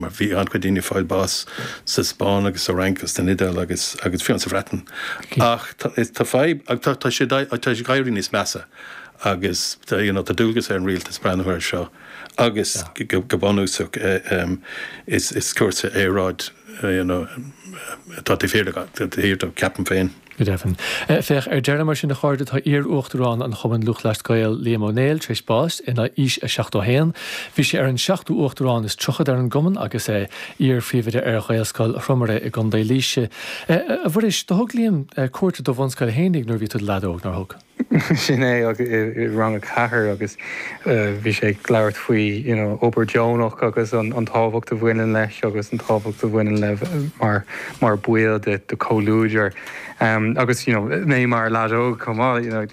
mar bhí an-chuid daoine ag fáil bháis sa Spáinn agus sa Fhrainc agus san Iodáil agus agus fiú sa Bhreatain. Ach tá fadhb, tá sé ag éirí níos measa agus you know tá dualgas ar an rialtas breathnú air seo agus go bunúsach is cúrsa aeráid you know atá de shíor acu, ceapaim féin. Go deimhin. Féach ar deireadh mar sin a chairde, tá iar-uachtarán Chumann Lúthchleas Gael, Liam Ó Néill, tar éis bás, in aois a 71. Bhí sé ar an seachtú uachtarán is tríocha ar an gcumann agus é iar-phríomhoide ar Ghaelscoil Thromaire i gContae Laoise. A Mhuiris, do thug Liam cuairt ar do bhunscoil fhéinig nuair a bhí tú i do leaid óg, nár thug? Sin é agus i rang a ceathair agus bhí sé ag labhairt faoi you know obair deonach agus an an tábhacht a bhaineann leis agus an tábhacht a bhaineann le mar mar baill de de comhluadar em agus you know mé mar leaid óg chomh maith you know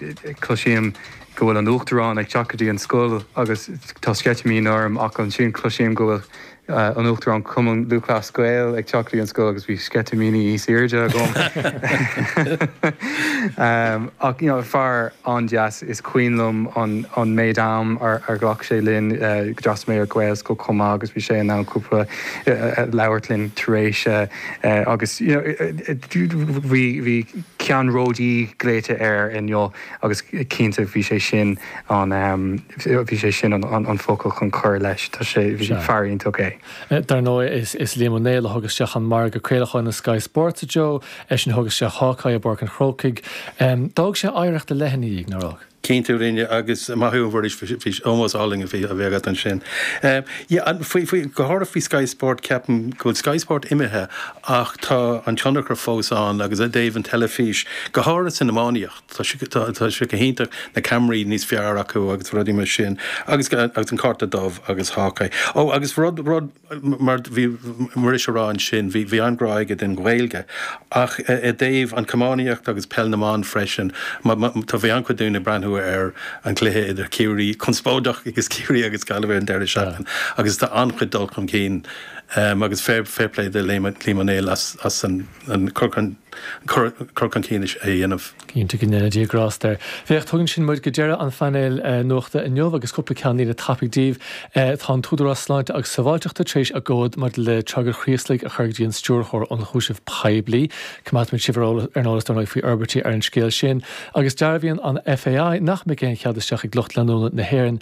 cloisím go bhfuil an Uachtarán ag teacht go dtí an scoil agus tá sceitimíní orm ach ansin cloisím go bhfuil an Uachtarán Chumann Lúthchleas Gael ag teacht go dtí an scoil agus bhí sceitimíní níos airde agam. Ach you know fear an-deas is cuimhin liom an méid am ar ghlac sé linn d'fhreastail mé ar Ghaelscoil chomh maith agus bhí sé in ann cúpla labhairt linn tar éis agus you know bhí ceannródaí glaoite air inniu. Agus cinnte bhí sé sin an, bhí sé sin an focal chun cur leis, tá sé, bhí, fear iontach é. Dar ndóigh is Liam Ó Néill a thug isteach an margadh craolacháin le Sky Sports, a Joe, eisean a thug isteach Hawk-Eye i bPáirc an Chrócaigh. D'fhág sé oidhreacht ar leith ina dhiaidh, nár fhág? Cinnte a rinne agus maith thú a Mhuiris, bhí sin ómós álainn a bhí agat ansin. Yeah, faoi, faoi, go háirithe faoi Sky Sport ceapaim go bhfuil Sky Sport imithe ach tá an tionchar fós ann agus i dtaobh an teilifís, go háirithe san iománaíocht, tá sé go hiontach, na ceamaraí níos fearr acu agus rudaí mar sin agus an cárta dubh agus Hawk-Eye. Ó agus rud, rud, mar bhí Muiris a rá ansin, bhí, bhí an-ghrá aige don Ghaeilge ach i dtaobh an chamógaíocht agus peil na mban freisin, má, má, tá, bhí an-chuid daoine ag breathnú ar an gcluiche idir Ciarraí, conspóideach, agus Ciarraí agus Gaillimh ar an deireadh seachtaine agus tá an-chuid dul chun cinn. Agus fair fair play do Liam Ó Néill as an cur chun cinn sin a dhéanamh. Cinnte go ndéana Dia grásta air. Féach, tugann sin muid go deireadh an phainéil nuachta inniu agus cúpla ceannlíne tapaidh daoibh. Tá an tÚdarás Sláinte agus Sábháilteachta tar éis a gcomhad maidir le tragóid an Chraoslaigh a chur go dtí an Stiúrthóir Ionchúiseamh Poiblí. Coimeádfaimid sibh ar an eolas dar ndóigh faoi fhorbairtí ar an scéal sin. Agus dearbhaíonn an FAI nach mbeidh aon chead isteach ag lucht leanúna na hÉireann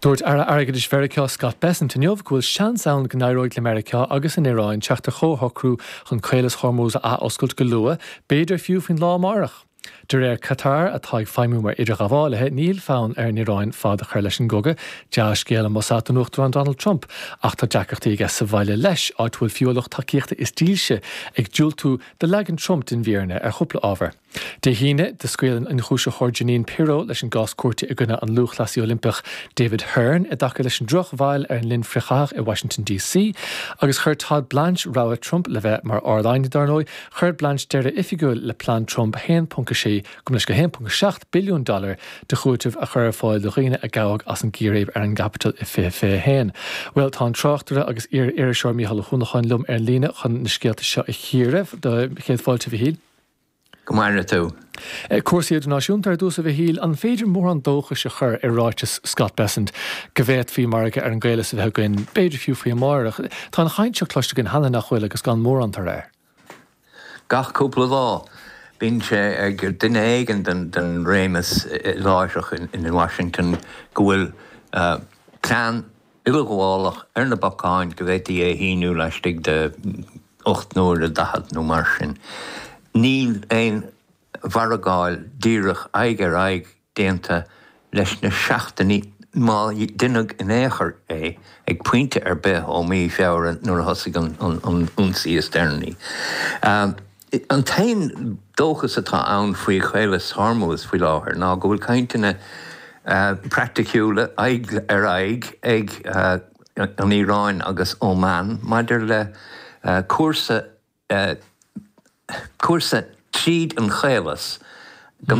Dúirt Aire Airgeadais Mheiriceá Scott Bessent inniu go bhfuil seans ann go n-éireoidh le Meiriceá agus an Iaráin teacht ar chomhshocrú chun Caolas Hormuz a athoscailt go luath, b'fhéidir fiú faoin lá amárach. De réir Qatar, atá ag feidhmiú mar idirghabhálaithe, níl fonn ar an Iaráin fad a chur leis an gcogadh, dea-scéal, ambasa, don Uachtarán Donald Trump, ach tá deacrachtaí aige sa bhaile leis, áit a bhfuil fiú a lucht tacaíochta is dílse ag diúltú do leagan Trump den bhfírinne ar chúpla ábhar. Dé hAoine, scaoil an t-ionchúisitheoir Jeanine Pirro leis an gcás cúirte i gcoinne an lúthchleasaí Oilimpeach David Hearn i dtaca leis an drochbhail ar an linn frithchaithach i Washington DC agus chuir Todd Blanche rogha Trump le bheith mar Ard-Aighne. Dár ndóigh, chuir Blanche deireadh oifigiúil le plean Trump 1.6 go 1.7 billiún dollar de chúiteamh a chur ar fáil do dhaoine a gabhadh as an gcíréib ar an gCaipeatól i 2021. Bhuel, tá an tráchtaire agus iar-iriseoir Mícheál Ó hUanacháin liom ar an líne chun na scéalta seo a chíoradh. Do chéad fáilte, a Mhíchíl. Go maire tú! Cúrsaí idirnáisiúnta ar dtús, a Mhíchíl. An féidir mórán dóchais a chur i ráiteas Scott Bessent go bhféadfaí margadh ar an gCaolas a bheith againn, b'fhéidir fiú faoi amárach? Tá an chaint seo cloiste againn cheana, nach bhfuil, agus gan mórán tairbhe air. Gach cúpla lá, bíonn sé ag duine éigin den réimeas láithreach in Washington go bhfuil plean. uileghabhálach ar na bacáin go bhféadfaí é a shíniú laistigh de ocht n-uaire daichead nó mar sin. Níl aon mhargáil díreach aghaidh ar aghaidh déanta leis na seachtainí má deineadh in aon chor é ag pointe ar bith ó mhí Feabhra nuair a thosaigh an t-ionsaí is deireanaí. An t-aon dóchas atá ann faoi Chaolas Hormuz faoi láthair ná go bhfuil cainteanna praiticiúla aghaidh ar aghaidh ag an Iaráin agus Óman maidir le cúrsa tríd an Chaolas.